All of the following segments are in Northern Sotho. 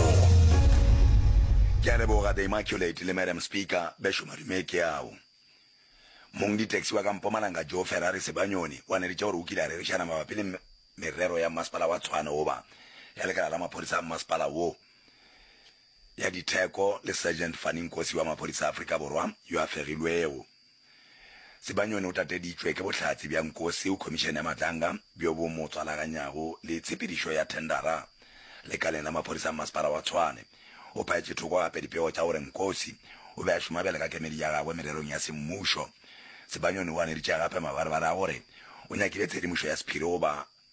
Ogo. Ke a leboga The Immaculate le Madam Speaker, Bešo Madume ke ao. Mong ditaxi wa ka Mpumalanga Joe Ferrari Sebanyoni wa neretša gore o kile a rerišana mabapi le merero ya Mmasepala wa Tshwane goba ya lekala la maphodisa a mmasepala wo, ya ditheko le Sergeant Fanny Nkosi wa maphodisa a Afrika Borwa yo a fegilwego. Sibanyoni o tateditšwe ke bohlatse bja nko seo Khomišene ya Matlanga bjo bo mo tswalaganyago le tshepedišo ya thendara lekaleng la maphodisa a mmasepala wa Tshwane. O phaetše thoko gape dipego tša gore Nkosi o be a šoma bjale ka kemedi ya gagwe mererong ya semmušo. Sibanyoni o ganeditše gape mabarebare a gore o nyakile tshedimošo ya sephiri go ba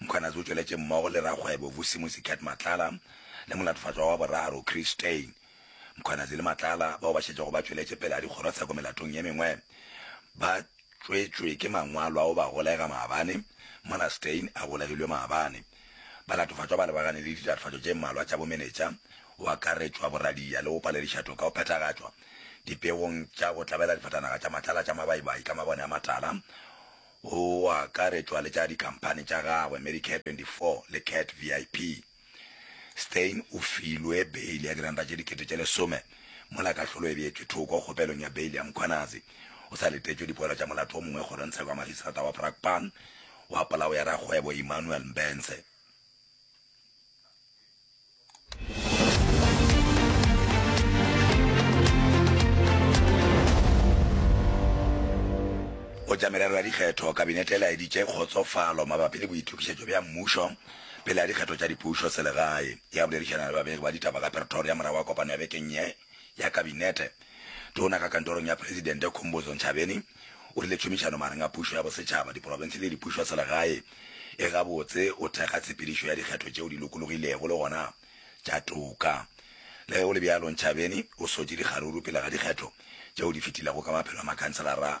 Mkhwanazi o tšweletše mmogo le rakgwebo Vusimuzi Cat Matlala le molatofatšwa wa boraro Chris Steyn. Mkhwanazi le Matlala bao ba šetšego ba tšweletše pela dikgorotsheko melatong ye mengwe ba tšwetšwe ke mangwalo a go ba golega maabane, mola Steyn a golegilwe maabane. Balatofatšwa ba lebagane le ditatofatšo tše mmalwa tša bomenetša, go akaretšwa boradia le go paledišato ka go phethagatšwa dipegong tša go tlabela difatanaga tša Matlala tša mabaibai ka mabone a matala, go akaretšwa le tša dikhamphani tša gagwe Medicare 24 le Cat VIP. Steyn o filwe beili ya diranta tše dikete tše lesome mola kahlolo e beetšwe thoko kgopelong ya beili ya Mkhwanazi. O sa letetšwe dipoelo tša molato o mongwe kgorongtsheko ya Magistrata wa Brakpan wa polao ya rakgwebo Emmanuel Mbense. Go tša merero ya dikgetho, Kabinete e laeditše kgotsofalo mabapi le boitokišetšo bja mmušo pele ga dikgetho tša dipušo selegae. Ya boledišana le babegi ba ditaba ka Pretoria morago ga kopano ya bekeng ye. ya Kabinete, Tona ka kantorong ya Presidente Khumbudzo Ntshavheni o rile tšhomišano magareng ga pušo ya bosetšhaba, diporofense le dipušoselegae e gabotse go thekga tshepedišo ya dikgetho tšeo di lokologilego le gona tša toka. Le ge go le bjalo, Ntshavheni o sotše dikgaruru pele ga dikgetho tšeo di fetilego ka maphelo a makhanselara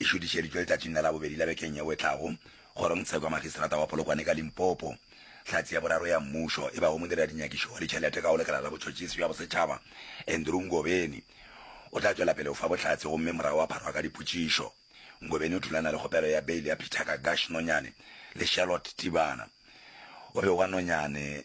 e šudišeditšwe letšatšing la Labobedi la bekeng yeo e tlago kgorongtshekwa magistrata wa Polokwane ka Limpopo. Hlatse ya boraro ya mmušo e bago modireladinnyakišo wa ditšhelete ka go lekala la botšhotšhisi bja bosetšhaba Andrew Ngobeni o tla tšwela pele go fa bohlatse gomme morago a pharwa ka dipotšišo. Ngobeni o thulana le kgopelo ya beile ya Peter Kagash Nonyane le Charlotte Tibana o bego a nonyane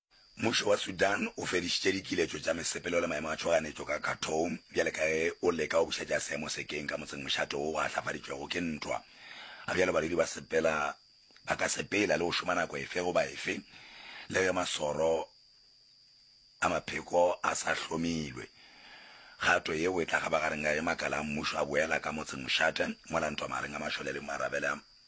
Mmušo wa Sudan o fedišitše dikiletšo tša mesepelo le maemo a tšhoganetšo ka Khartoum bjale ka ge o leka go bušetša seemo sekeng ka motseng mošate wo go ahlafaditšwego ke ntwa. Ga bjalo badudi ba sepela ba ka sepela le go šoma nako efe goba efe le ge masoro a mapheko a sa hlomilwe. Kgato yeo e tla kgabagareng ka ge makala a mmušo a boela ka motseng mošate mola ntwa magareng ga mašole le marabele a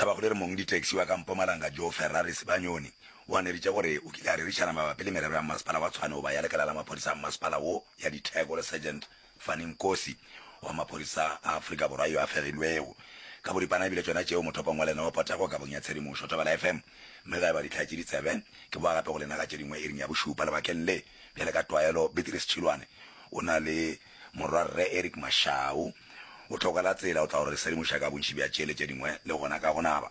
Tabakgolo e re mong ditaxi wa ka Mpumalanga Joe Ferrari Sibanyoni o aneritše gore o kile a rerišana mabapi le merero ya mmasepala wa Tshwane goba ya lekala la maphodisa a mmasepala wo ya ditheko le Sergeant Fanny Nkosi wa maphodisa a Afrika Borwa yo a fegilwego ka boripana e bile tšona tšeo mothopong wa lena wa potego kabong ya tshedimošo Thobela FM mme ga e ba dihlaya tše ditsebe ke boa gape go lena ka tše dingwe iring ya bošupa lebakeng le bjale ka tlwaelo Beatrice Tšhilwane o na le Morwa Rre Eric Mashau o tlhokela tsela o tla go re sedimoša ka bontši bja tšeele tše dingwe le gona ka go naba.